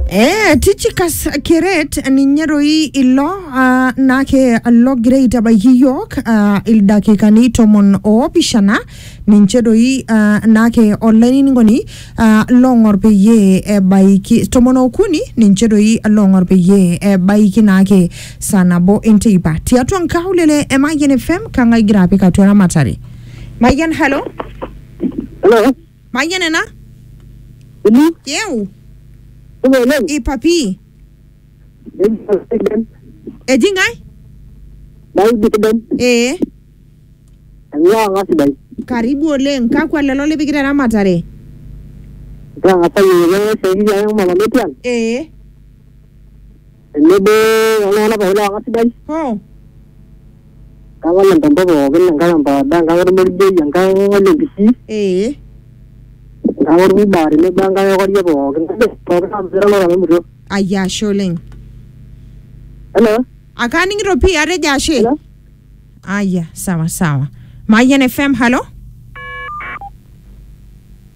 Eh, Tychicus Keret ninye doi ilo ah, nake logira aitabaiki iyiook ah, ildakikani tomon oopishana ninche doi ah, nake olainining'oni ah, loong'or peyie ebaiki tomon okuni ninche doi loong'or peyie ebaiki naake saa nabo enteipa tiatua nkaulele e Mayian FM kang'ae igira apik atua eramatare Mayian halo Hello. Mayian ena? Ini, Yeu? kulo oleng. Ipapi. Nejo sidan, Eji ngai? naudi sidan, Ee. eng'ua ng'a sidai. Karibu oleng. Kakwa lelo lipikita eramatare? Ntang'asa yieyio siai ang' mama metii ang'. Ee. tenebo oltung'anak pookin looka sidai Oh. enkang olempompo pookin enkang empaada enkang ormorigei enkang olempisi Ee. enkang orkuba tenebo enkang ekoria pookin kajo pookin aasira olorora memuto Ayia ashe oleng. hello Akaaning'ito pii atejo ashe. hello Aya, sawa sawa. Mayian FM, halo?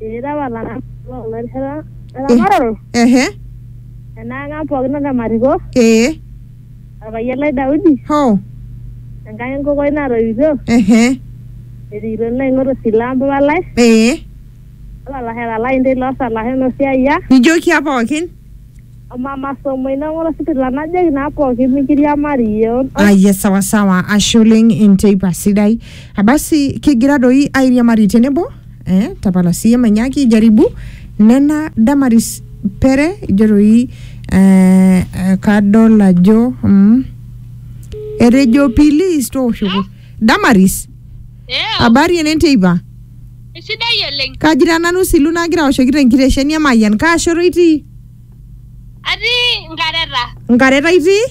Eeta apa ilaramatak loo kuna rishata eramataro Ehe. enaang' ang' pookin anaa ematito Ee. orpayian lai Daudi Hoo. enkang' enkokoi natoiutuo Ehe. erikito nanu aing'ot osila o mpapa lai Ee. o lalashera lainei loosalashen o siayiak. Nijoki aa pookin. Mama somo ina ng'ola sipitila najoki naa pooki mikiriamari yeon. Aye sawa sawa, ashe oleng enteipa sidai. Abasi kigira doi airiamari tenebo eh, tapala siye manyaki jaribu nena Damaris Pere ijo doi eh, eh, kadol ajo mm, etejo pilis tooshoki Damaris Eo, Habari ene nteipa. sidai oleng. Kajira nanu silu nagira aoshoki te nkitesheni e Mayian. Kaa shoto itii? Atii nkareta. Nkareta itii?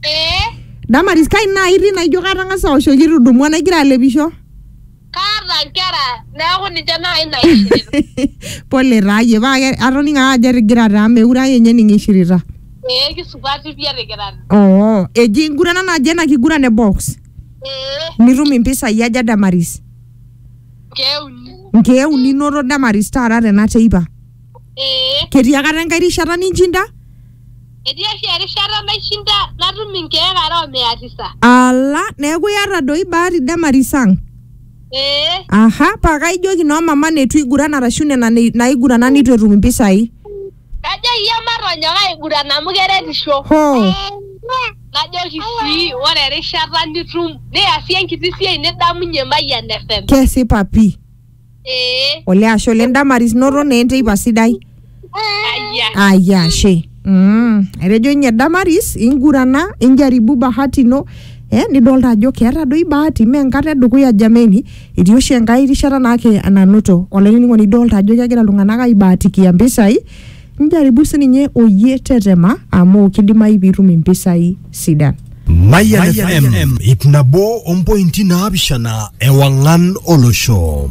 Ee, Damaris kai naa itii naijo katang'asa aoshoki itudumua naigira alepisho. kaata nkera neeku ninche naai naishirita. Pole taa iyie paa ke- atoning'o ake ajo etigira taa meure ake ninye ninye ishirita. Ee kisupati pii etikirate. Oo, eji enkiguran naji ena kiguran e box. Ee, nitum impisai aja damaris keuni. nkeek uni inoto damaris taata tena teipa Ee, ketii akata enkae rishata ninchinda etii oshi erishata naishinda natum inkeek are o mia tisa. ala neeku iyata doi bahati damaris ang Ee, aha paa kaijoki noo mama neitu iguran arashu nena nei- naigurana neitu etum impisai Najoki iyie matonyok aiguran amu keretisho. Hoo. Najoki sii ore erishata nitum niasie enkiti siai nidamunye Mayian FM. Kesipa pii. Ee. Olee ashe oleng Damaris noto naa enteipa sidai. Ayia. Ayia ashe. Mm. Etejo ninye Damaris ingurana injaribu bahati ino eh nidolta ajo keeta doi bahati mee enkata edukuya jameni. Etii oshi enkae rishata naake nanoto olainining'oni idolta ajo kegira iltung'anak aibaatikia mpisai, njaribu sininye oyie tetema amu kidimayu piitum impisai sidan. Mayian FM ip nabo ompointi naapishana ewang'an olosho.